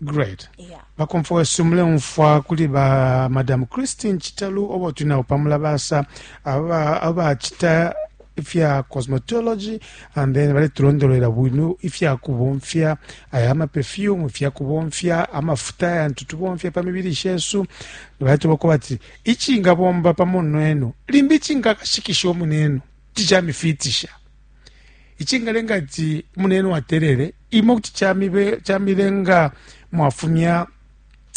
great yeah. bakomfo wesu muleumfwa kuli ba madam christine chitalu obo tuli nabo pamulabasa abacita ifya cosmetology and then baletulondolwela bwino ifya kubomfya aya amaperfume ifya kubomfya amafuta yantu tubomfya pa mibili shesu baletubako bati icingabomba pamo nenu limbi cingakashikisha omunenu ticamifitisha icingalenga ati munenu atelele imo kuti camilenga mwafumya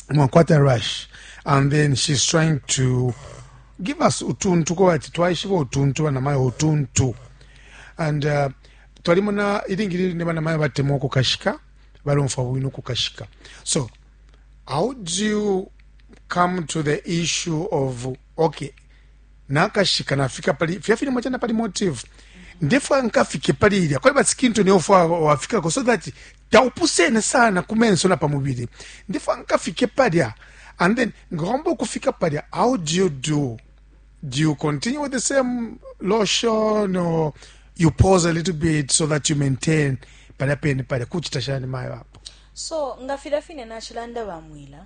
mwakwata rush and then she's trying to give us utuntu ko ati twaishiba utuntu banamayo utuntu and uh, twalimona ilingi line banamayo batemwa okukashika balomfa bwino okukashika so how do you come to the issue of okay nakashika nafika pali fya filimo chana pali motive ndefwa nkafike pali ilya kwali basikinto niyo fwa wafikako so that taupusene sana ku menso na pamubili ndefwa nkafike palya and then ngomba ukufika palya how do you do do you continue with the same lotion or you pause a little bit so that you maintain palya pene palya kuchita shani mayo apo so nga filya fine nachilanda bamwila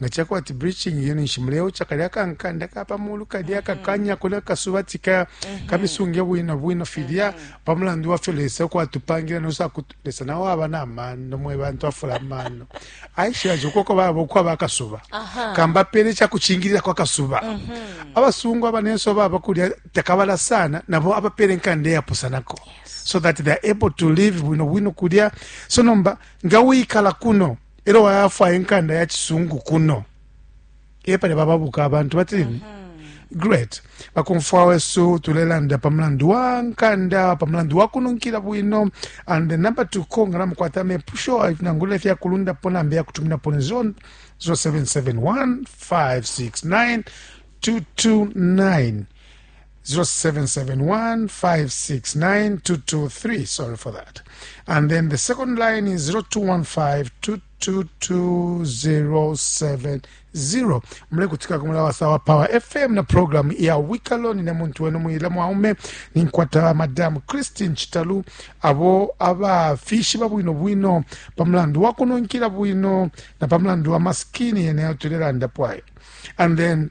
Nga cakwa ati breaching iyo ninshi muleocha kalya kankanda kapamulu kalya mm-hmm. kakanya kuna kasuba tika mm-hmm. kabisunge bwino bwino filya mm-hmm. pamulandu wafyo lesa ukwatupangila nosa kutu lesa nawo aba na mano mwe bantu afula mano aishira jokoko babo kwa bakasuba kamba pele cha kuchingirira kwa kasuba abasungu abanenso baba kulya takabala sana nabo abapele nkande yapusanako so that they are able to live bwino bwino kulya so nomba nga wikala kuno elo wayafwaya inkanda ya cisungu kuno epali bababuka abantu batini mm -hmm. great bakumfwa wesu tulelanda pa mulandu wa nkanda pa mulandu wa kununkila bwino and the number to call nga namukwata amepusho nangula ifya kulundapo nambe ya kutuminapo ni 0771 569 229 0771569223 sorry for that and then the second line is 0215222070 mule kutika kumula wasawa power fm na program ya wikalo nine muntu wenu muyila mwaume ninkwata madam christine chitalu abo abafishi babwino bwino pamulandu wakununkila bwino na pamulandu wa maskini yene yatulilandapo ayo and then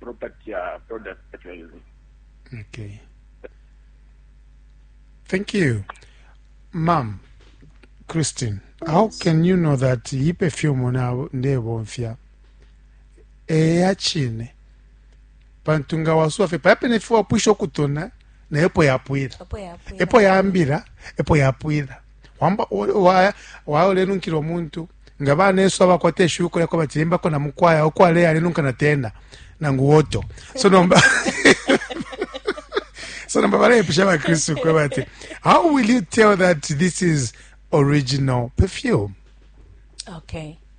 property ya product fertilizer. okay thank you mam christine how can you know that iyi perfume na- ndebomfya eya chine pantu nga wasuwa fe paya pene fe wapwisha ukutona naye epo yapwila apo yapwila epo yambira epo yapwila wamba walenunkila umuntu nga banesu abakwata eshuko lyako batilimbako na mukwaya uko aleya alenunka na tena nangu woto so nomba so nomba balepisha bakristu kwe bati how will you tell that this is original perfume okay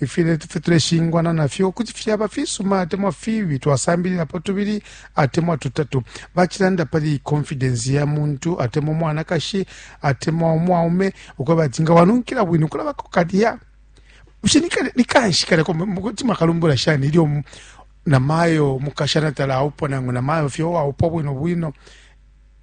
Ifintu ifyo tuleshingwana na fyo kuti fyaba fisuma atemwa fibi. Twasambililapo tubili atemwa tutatu. Bacilanda pali konfidensi ya muntu atemwa umwanakashi atemwa umwaume ukweba ati nga wanunkila bwino kulabako kalya. Bushe ni kanshi kalya kuti mwakalumbula shani ilyo namayo mukashana talaupwa nangu namayo fye uwaupwa bwino bwino?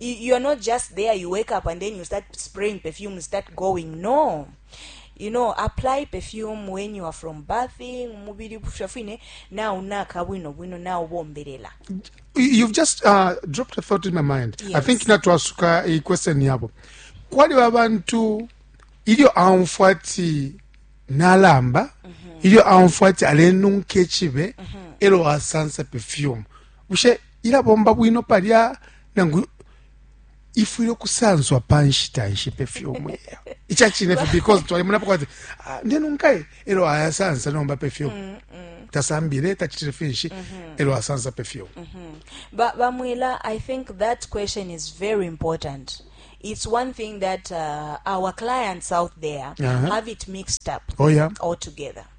you are not just there you wake up and then you start spraying perfume you start going no you know apply perfume when you are from bathing mubili busha fine na unaka bwino bwino na ubombelela you've just uh, dropped a thought in my mind yes. i think natwasuka i question yabo kwali abantu ilyo aumfwa ati nalamba mm -hmm. ilyo aumfwa ati alenunka echibe mm -hmm. elo asansa perfume bushe ilabomba bwino palya nangu ifwile ukusanswa pa nshita nshipe fye umwela ica cine fye because twalimonapo kwati ah, ndenunkaye elo ayasansa nomba pe fye mm, mm. tasambile tacitile finshi mm -hmm. elo asansa pe fye mm -hmm. bamwela i think that question is very important it's one thing that uh, our clients out there uh -huh. have it mixed up oh, yeah. altogether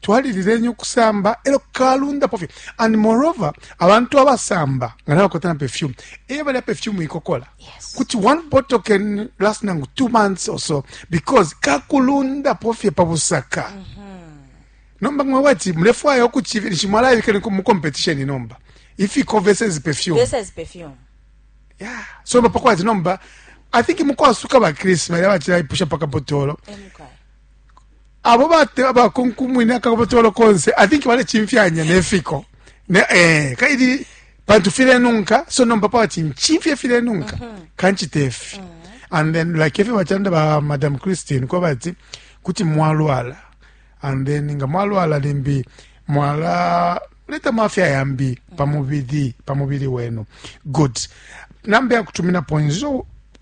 twalilileni ukusamba e lyo kalundapo fye and moreover abantu abasamba nga nabakota na perfume eye balya perfume ikokola kuti one bottle can last nangu two months or so because kakulundapo fye pa busaka mm -hmm. nomba nga wati mulefwaya ukuchivilisha mwalaibika mu competition nomba if you cover says perfume says perfume yeah so bapako wati nomba i think mukwasuka ba chris bali abachira ipusha paka botolo abo bate abakunkumwine akakobotolo konse i think balecimfyanya nefiko ne, eh, kaili pantu filenunka so nomba pawati ncimfye filenunka mm -hmm. kancite fi mm -hmm. and then like efyo bacanda ba madam christine ko bati kuti mwalwala and then nga mwalwala limbi mwala leta mafya yambi pamubili pamubili wenu good namba yakutumina point 0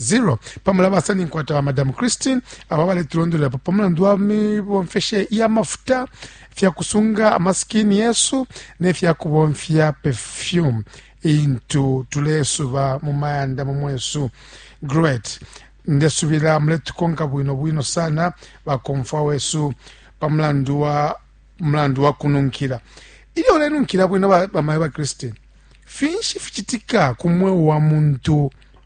0 pa mulabasa ninkwata ba madam christine aba baletulondolelapo pa mulandu wa mibomfeshe ya mafuta fya kusunga amasikini yesu ne fya kubomfya perfume intu tulesuba mu mayanda mu mwesu great ndesubila muletukonka bwino bwino sana bakomfwa wesu pa mulandu wa mulandu wa kununkila ilyo ulenunkila bwino bamayo ba, ba christine finshi ficitika ku mweo wa muntu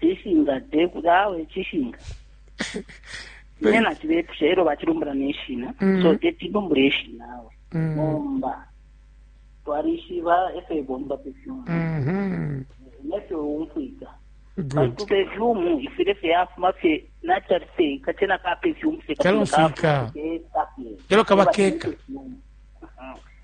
Cishinga te kuti awe cishinga. Ine nacibepusha elo bacilumbula neshina. Mm. So teti lumbule ishina awe. Mm. Bomba. Twalishiba efe bomba perfume. Mhm. Nefyo umfwika. Good. Ku perfume ifile fe afuma fe natural fe kachena ka perfume fe. Kalomfika. Elo kabakeka.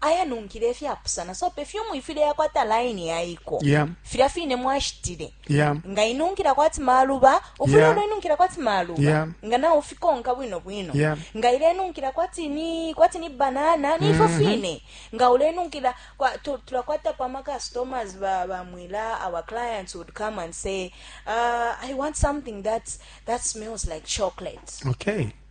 ayanunkila ifyapusana so pefyumu ifile yakwata laini yaiko yeah. filya fine mwashitile yeah. nga inunkila kwati maluba ufula yeah. uloinunkila kwati maluba yeah. nga nawe ufikonka bwino bwino yeah. nga ilenunkila kwati ni kwati ni banana nifo mm -hmm. fine nga ulenunkila tulakwata kwa ma customers ba, ba mwila our clients would come and say uh, i want something that's, that smells like chocolate okay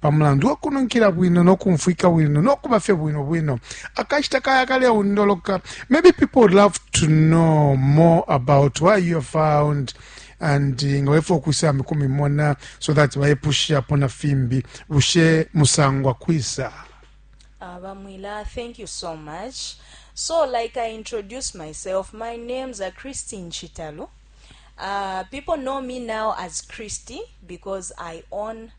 Pa mulandu wa kununkila bwino no kumfwika bwino no kuba fye bwino bwino, akashita kaya kaleundoloka. Maybe people would love to know more about why you are found and nga wefo kusambi kumimona so that bayepushapo na fimbi bushe musangwa kwisa abamwila ah, thank you so much so like i introduce myself my name's a christine chitalo uh, people know me now as christy because i own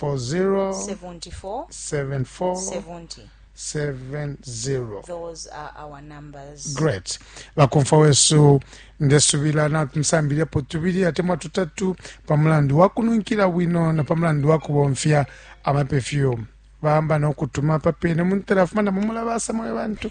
40 74 74 70. 70 Those are our numbers. great bakomfa wesu ndesubila natumisambiliapo tubili atemwa tutatu pa mulandu wa kununkila bwino na pa mulandu wa kubomfya amapefyumu bamba nokutuma papene muntela afuma na mumulabasa mwe bantu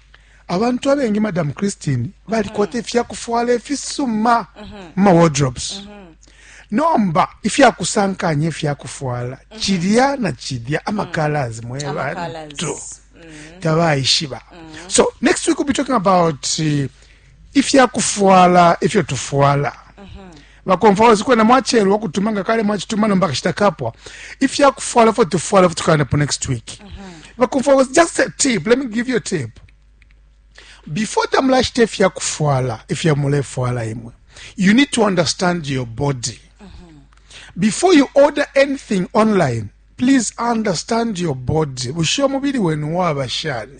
Abantu abengi, Madam Christine, balikwata mm-hmm. ifya kufwala ifisuma mm-hmm. mu ma wardrobes. Mm -hmm. nomba ifyakusankanya ifyakufwala mm -hmm. chilya na chilya amakalas mm -hmm. mwe bantu mm -hmm. tabaishiba mm -hmm. so next week we'll be talking about uh, ifyakufwala ifyo tufwala mm -hmm. Bakomfwawesi kwena mwacelwa ukutuma nga kale mwacituma nomba kashita kapwa ifya kufwala fo tufwala futukandapo next week uh -huh. bakomfwawesi just a tip let me give you a tip before tamulashita ifya kufwala ifya mulefwala imwe you need to understand your body uh -huh. before you order anything online please understand your body bushe omubili wenu waba shani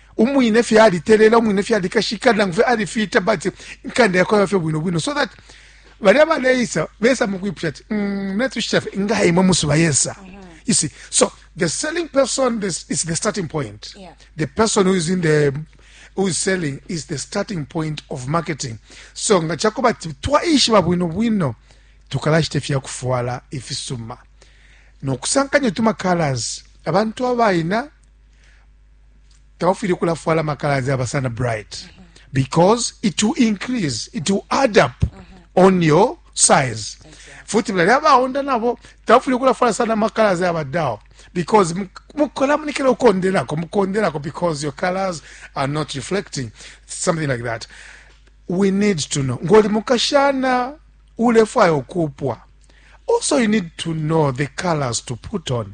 umwine fye alitelela umwine fye alikashika nangu fye alifita but inkanda yakwe yaba fye bwino bwino so that balya baleisa besa mukwipusha ati mm, natushita fye nga imwe musuba yesa mm -hmm. you see so the selling person this is the starting point yeah. the person who is in the who is selling is the starting point of marketing so nga chakuba ati twaishiba bwino bwino tukalashita fya kufwala ifisuma nokusankanya tuma colors abantu abaina tabafwile ukulafwala amakalasi aba sana bright because it will increase it will add up on your size futi mlali abaonda nabo tabafwile ukulafwala sana amakalasi aba down because mukola munikira ukonderako mukonderako because your colors are not reflecting something like that we need to know ngoli mukashana ulefwaya ukupwa also you need to know the colors to put on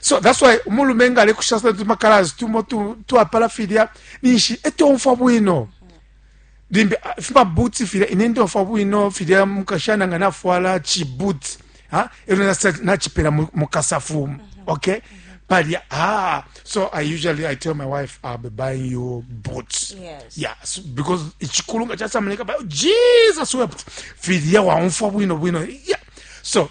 so that's why umulume nga alekusha sana tumakalazi tumo twapala filya ninshi etomfwa bwino limbi ah, fimabuti filya ine ntomfwa bwino filya mukashana nga nafwala chibuti ha ero nachipela mukasafu mhm. okay mm -hmm. But yeah, ah, so I usually I tell my wife I'll be buying you boots. Yes. Yeah, so, because ichikulunga cha samaleka, but Jesus wept. Fidia wa unfa wino wino. Yeah. So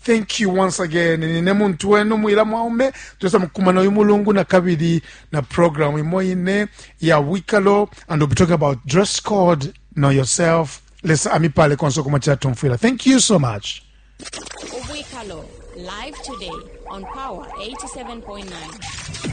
Thank you once again. Nine muntu wenu mwila mwaume tuweza mkumana uyu mulungu na kabili na program imo ine ya wikalo and we'll be talking about dress code, know yourself. Lesa amipale konso kumachila tumfwila. Thank you so much. Ubwikalo live today on Power 87.9.